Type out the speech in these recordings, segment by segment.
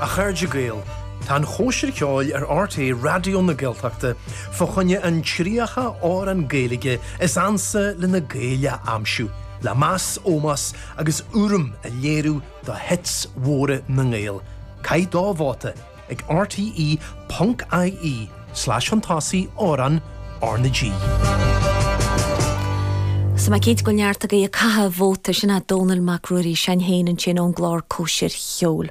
A chairde Gael, tá an chóisir cheoil ar RTÉ Raidió na Gaeltachta fá choinne an 30 amhrán Gaeilge is ansa le na Gaeil a aimsiú, le meas, ómós agus urraim a léiriú do 'hits' mhóra na nGael. Caith do vóta! ag rte.ie/shuntásaí amhráin RnaG. Is tá mé cinnte go bhfuil neart agaí ag caitheamh vóta, sin é Dónall Mac Ruairí s'againn féin, ansin ón gclár Cóisir Cheoil.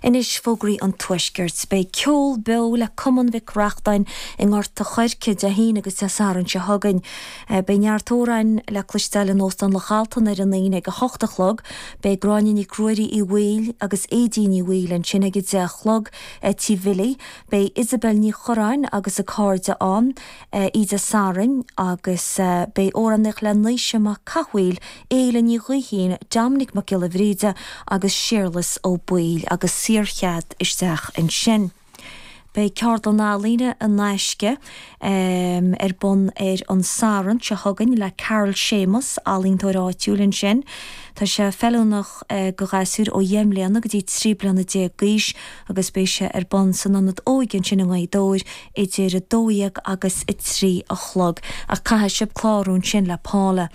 Anois, fógraí an Tuaiscirt. Beidh ceol beo le Cumann Mhic Reachtáin i nGort a' Choirce Dé hAoine agus Dé Sathairn seo chugainn. Beidh neart amhráin le cloisteáil in Óstán Loch Altan ar an Aoine ag a hocht a chlog. Beidh Gráinne Nic Ruairí Uí Bhaoill agus Éadaoin Ní Bhaoill ansin ag a deich a chlog i dTí Bhilly. Beidh Isobel Ní Chuireáin agus a cairde ann oíche Dé Sathairn agus beidh amhránaíocht le Naoise Mac Cathmhaoil, Éile Ní Ghaoithín, Dominic Mac Giolla Bhríde agus Séarlas Ó Baoill agus saor-chead isteach ansin. Beidh ceardlann ealaíne in aisce ar bun ar an Satharn seo chugainn le Carl Séamus, ealaíontóir áitiúil ansin. Tá sé feiliúnach do ghasúir ó dheich mbliana go dtí trí bliana déag d'aois agus beidh sé ar bun san Ionad Óige ansin i nGaoth Dobhair idir a dó dhéag agus a trí a chlog. Ach caithfidh sibh clárú ansin le Paula.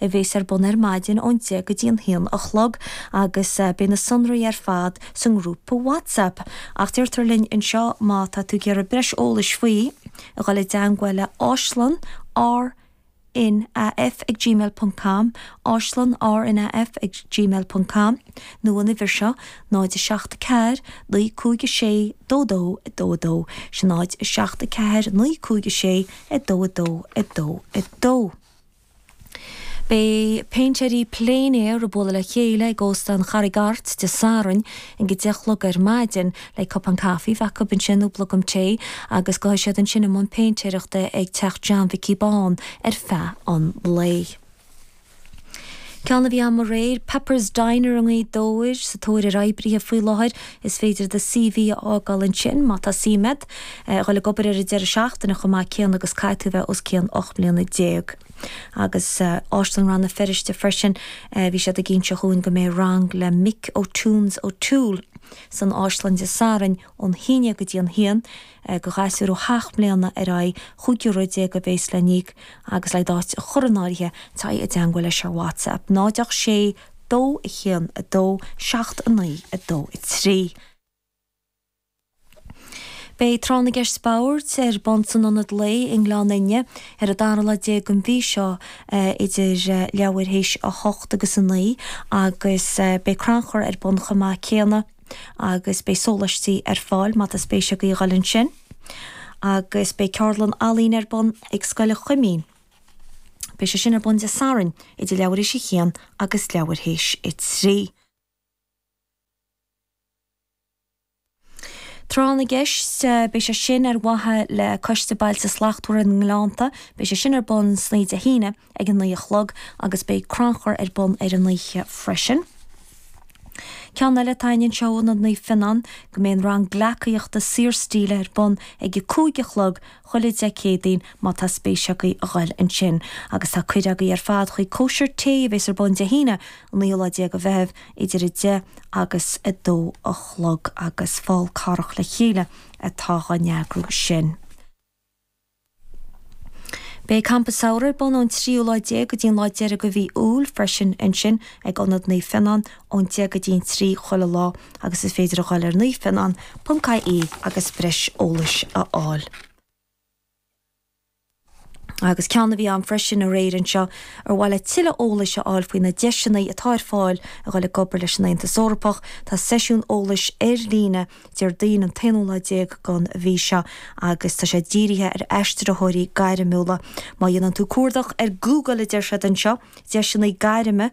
a bhéas ar bun ar maidin ón deich go dtí an haon a chlog agus beidh na sonraí ar fad sa ngrúpa WhatsApp ach deirtear linn anseo má tá tú ag iarraidh breis eolais faoi a dhul i dteangmháil le áislann RNAF ag gmail ponc com, áislann RNAF ag gmail ponc com nó an uimhir seo 074 956 2222 sin 074 956 2222. Beidh péintéirí plein air ag bualadh le chéile ag Óstán Charraig Airt Dé Sathairn ag a deich a chlog ar maidin le cupán caife a bheith acu ansin nó blogam tae agus gabhfaidh siad ansin i mbun péintéireachta ag Teach John Mhicí Bán ar feadh an lae. Ceann a bhí ann aréir, Pepper's Diner i nGaoth Dobhair, sa tóir ar oibrithe faoi láthair. Is féidir do CV a fhágáil ansin má tá suim agat. a dhul ag obair ar an deireadh seachtaine chomh maith céanna agus caithfidh tú a bheith os cionn ocht mbliana déag. Agus Áislann Rann na Feirste freisin, bhí siad ag inse dhúinn go mbeidh rang le Mick O'Toons O'Toole san Áislann Dé Sathairn ón haon déag go dtí an haon do ghasúir ó sheacht mbliana ar aghaidh, chúig euro déag a bhéas le n-íoc agus le d'áit a chur in áirithe, téigh i dteangmháil leis ar WhatsApp, 0 8 6 2 1 2 7 9 2 3. Beidh Tráth na gCeist Boird ar bun san Ionad Lae i nGleann Fhinne ar an dara lá déag den mhí seo idir leathuair théis a hocht agus a naoi agus beidh crannchur ar bun chomh maith céanna agus beidh sólaistí ar fáil má tá spéis agaibh a dhul ansin. Agus beidh ceardlann ealaíne ar bun ag Scoil Chuimín. Beidh sé sin ar bun Dé Sathairn idir leathuair théis a haon agus leathuair théis a trí. Tráth na gCeist, Beidh sé sin ar mhaithe le Coiste Bailte Slachtmhara na nGleannta. Beidh sé sin ar bun san oíche Dé hAoine ag a naoi a chlog agus beidh crannchur ar bun ar an oíche freisin. Ceann eile, tá Ionad Seó Naomh Fionán go mbeidh an rang gleacaíochta saorstíle ar bun ag a cúig a chlog chuile Dé Céadaoin má tá spéis agaibh a ghoil ansin. Agus tá cuireadh agaibh ar fad chuig cóisir tae a bheas ar bun Dé hAoine an naoú lá déag de Mheitheamh idir a deich agus a dó a chlog agus Fál Carrach le chéile atá dhá n-eagrú sin. Beidh Campa Samhraidh ar bun ón tríú lá déag go dtí an lá deiridh de mhí Iúil freisin ansin ag Ionad Naomh Fionán, ón deich go dtí'n trí chuile lá agus is féidir a dhul ar naomh fionán ponc ie agus breis eolais a fháil. Agus ceann a bhí ann freisin aréir anseo, ar mhaith leat tuilleadh eolais a fháil faoi na deiseanna atá ar fáil a dhul ag obair leis an Aontas Eorpach, tá seisiún eolais ar líne Déardaoin an t-aonú lá déag den mhí seo agus tá sé dírithe ar aistritheoirí gairmiúla. Má dhéanann tú cuardach ar Google a deir siad anseo, deiseanna gairme,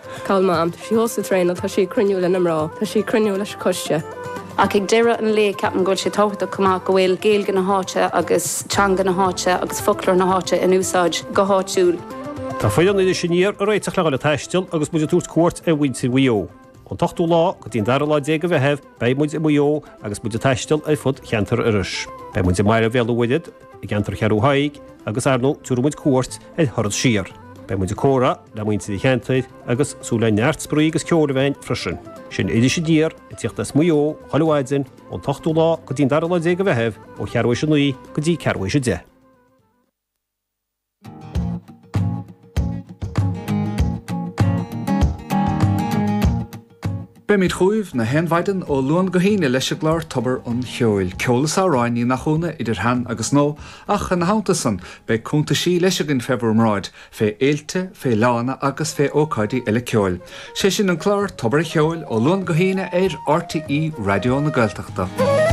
Tá mam. Tá sí thuas ag traenáil. Tá sí ag cruinniú le na mná. Tá sí ag cruinniú leis an coiste. Ach ag deireadh an lae ceapaim go bhfuil sé tábhachtach chomh maith go bhfuil Gaeilge na háite agus teanga na háite agus foclóir na háite in úsáid go háitiúil. Tá foireann Iris Aniar ag réiteach le dhul ag taisteal agus muid ag tabhairt cuairt ar mhuintir Mhaigh Eo. Ón t-ochtú lá go dtí an dara lá déag de Mheitheamh beidh muid i Maigh Eo agus muid ag taisteal ar fud cheantar Iorrais. Beidh muid i mBaile Bhéal an Mhuirthead, I gceantar Cheathrú Thaidhg agus ar ndóigh tabharfaidh muid cuairt ar thuras siar. Beidh muid ag comhrá le muintir an cheantair agus súil le neart spraoi agus ceol ann freisin. Sin Iris Aniar ag tíocht as Maigh Eo chuile mhaidin ón t-ochtú lá go dtí'n dara lá déag de Mheitheamh ó cheathrú théis a naoi go dtí ceathrú théis a deich. Beimíd chugaibh 'chaon mhaidean ó Luan go hAoine leis an gclár Tobar an Cheoil, ceol is amhráin, ní nach ionadh, idir shean agus nua, ach ina theannta san, beidh cúntaisí leis againn fé bhur mbráid, fé fhéilte, fé fhleánna agus fé ócáidí eile ceoil. 'Sé sin an clár Tobar a' Cheoil ó Luan go hAoine ar RTÉ Raidió na Gaeltachta.